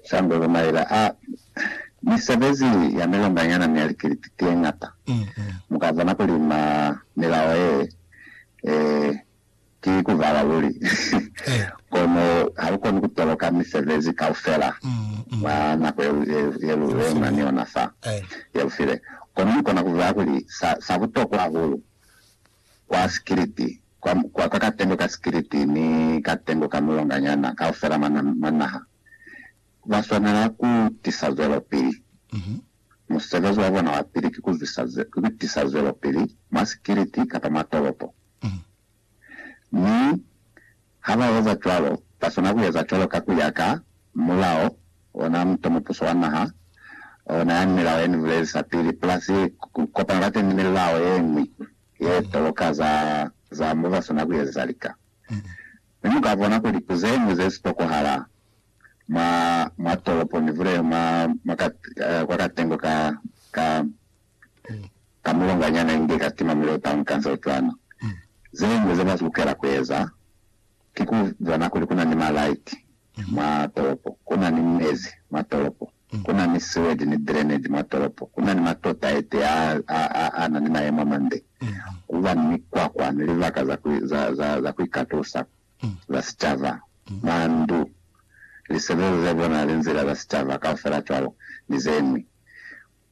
Sandolo Maila a Ni sebezi ya milonganyana mi ya likiliti tye ñata. Mu ka bona kuli ma milao ye e ki ku vala luli. Kono ha lu koni ku toloka misebezi kaufela mwa nako ye lu lwema ni yona fa ye lu file. Kono ni kona ku vaya kuli sa butokwa hahulu kwa sikiliti, kwa, kwa, kwa katengo ka sikiliti ni katengo ka mulonganyana kaufela mwa, mwa naha, ba swanela ku tisa zwelopili. Musebezi wa bona wa pili ki ku zwisa, ki ku tisa zwelopili mwa sikiliti kapa mwa tolopo. Mi Ha ba eza cwalo, ba swana ku eza cwalo ka ku ya ka mulao, ona muto mupuso wa naha o na yani milao ye ni bulelisa pili, plus ku kopana kateni ni milao ye ñwi ye toloka za, za mo ba swana ku ezeza lika. Mi mu ka bona kuli ku ze ñwi ze si tokohala mwa, mwa tolopo nivule mwa, mwa ka, kwa katengo ka, ka, ka mulonganyana inge ka sitima mi lota ni kansa cwani. Zeñwi ze ba lukela ku eza, ki ku bona kuli ku na ni malaiti mwa tolopo, ku na ni mezi mwa tolopo, ku na ni siwedi ni drainage mwa tolopo, ku na ni matota ete a, a, a, a na ni mayemo a mande, ku ba ni mikwakwa ni libaka za ku, za, za, za ku ikatusa za sicaba, mandu, lisebelezo ze bonali, nzila za sicaba, kaufela cwalo, ni zeñwi.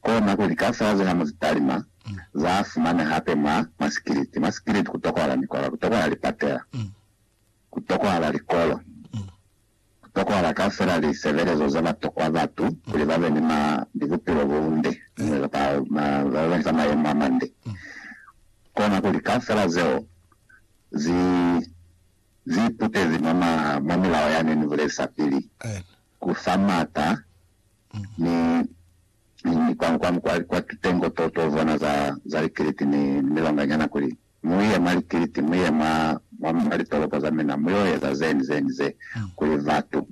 Kona kuli kaufela ze ha mu zi talima, za fumana hape mwa masikiliti. Masikiliti ku tokohala mikwaba, ku tokohala lipatela, ku tokohala likolo, ku tokohala kaufela li sebelezo ze ba tokwa batu kuli ba be ni ma, ni bupilo bo bunde, inge kapa ma, ba be ni za mayemo a mande. Kona kuli kaufela zeo zi, zi iputezi mwa ma, mwa milao yani ni bulezisapili, ku fa mata Ni limi kwa, kwa, kwa, kwa titengo to, to zona za, za likiliti ni, ni milonga nyana, kuli, Mu ye mwa likiliti, mu ye mwa, mwa, mwa litolopo za mina, mu yo eza ze ni ze ni ze, kuli batu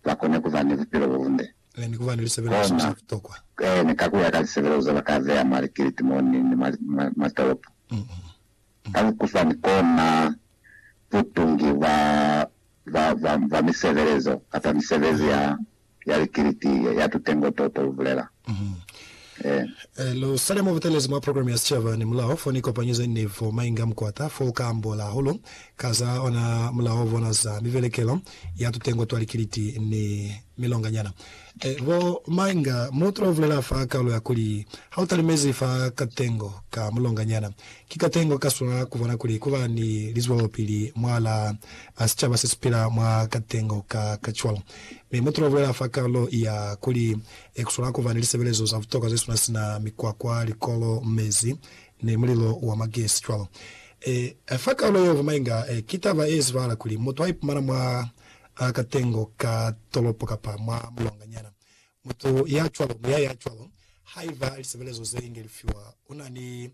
ba kone ku ba ni bupilo bo bunde. Ee, ni ku ba ni lisebelezo Kona, za butokwa. ee, ni ka ku ya ka lisebelezo ze ba ka beya mwa likiliti mo ni, ni mwa, mwa, mwa tolopo. Kalukusani kona butungi bwa, bwa, bwa, bwa misebelezo kapa misebezi ya, ya likiliti ye, ya tutengo to, to bulela. Ee. Ee, lu sale mo butelezi mwa program ya sicaba, ni mulaho fo ni kopanyo ze ni fo mainga mukwata, fo u ka ambola hahulu ka za ona mulaho bona za mibelekelo ya tutengo twa likiliti ni milonganyana. Bo Mainga, Mo tula ubulela fa kaulo ya kuli, Ha u talimezi fa katengo ka mulonganyana, ki katengo ka swa kubona kuli kuba ni lizwelopili mwalaa sicaba se sipila mwa katengo ka ka cwalo. Mi mo tula ubulela fa kaulo ya kuli, Ku swanela kuba ni lisebelezo za butokwa zesuna sina mikwakwa, likolo, mezi, ni mulilo wa magesi cwalo. Fa kaulo yeo, bo Mainga, ki taba ye zibahala kuli mutu a ipumana mwa Ha ka tengo ka tolopo kapa mwa mulonga nyana. Mutu ya cwalo, muya ya cwalo, haiba lisebelezo ze inge li fiwa, una ni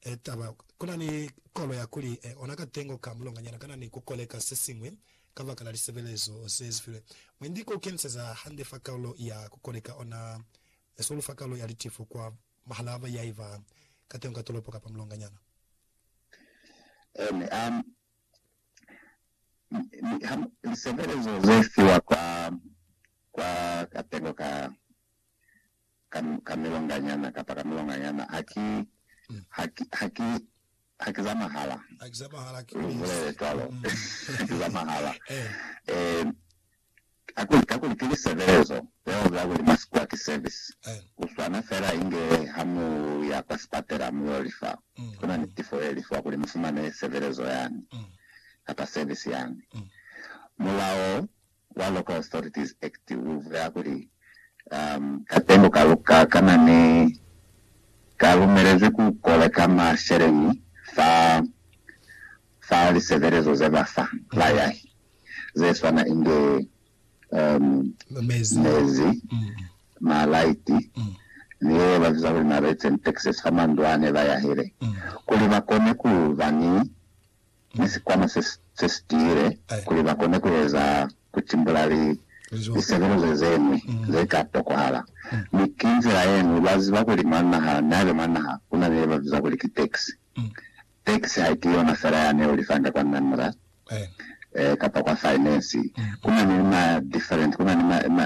e, taba, kuna ni kolo ya kuli e, ona ka tengo ka mulonga nyana kana ni kukoleka sesiñwi kabakala lisebelezo ze zifilwe. Mwendi ku keniseza hande fa kaulo ya kukoleka, ona esolu fa kaulo ya litifo kwa mahalaba yaiba ka tengo ka tolopo kapa mulonga nyana. Ene a Lisebelezo ze fiwa kwa katelelo ka milonganyana kapa ka milonganyana ha ki za mahala, lu bulele cwalo. Kakuli, kakuli ki lisebelezo zeo za kuli masikwa ki service, ku swana fela inge ha mu ya kwa sipatela mu yo lifa, ku na ni tifo ye lifiwa kuli mu fumane sebelezo yani, kapa service yani. Mulao wa Local Authorities Act u bulela kuli, um, katengo ka luka ka na ni, ka lumelezwi ku koleka masheleñi fa fa lisebelezo ze ba fa bayahi ze swana inge mezi, malaiti, ni ye ba biza kuli marates and taxes fa mandu a ne ba yahile, kuli ba kone ku ba ni ni sikwama se si tiile kuli ba kone ku eza ku timbula lisebelezo ze ñwi ze ka tokohala. Mi ki nzila ye ñwi, lwa ziba kuli mwa naha, nihabe mwa naha ku na ni ye ba biza kuli ki tax, Tax haiki yona fela yane ulifanga kwa Namra kapa kwa Finance. Kunani ma different, kunani ma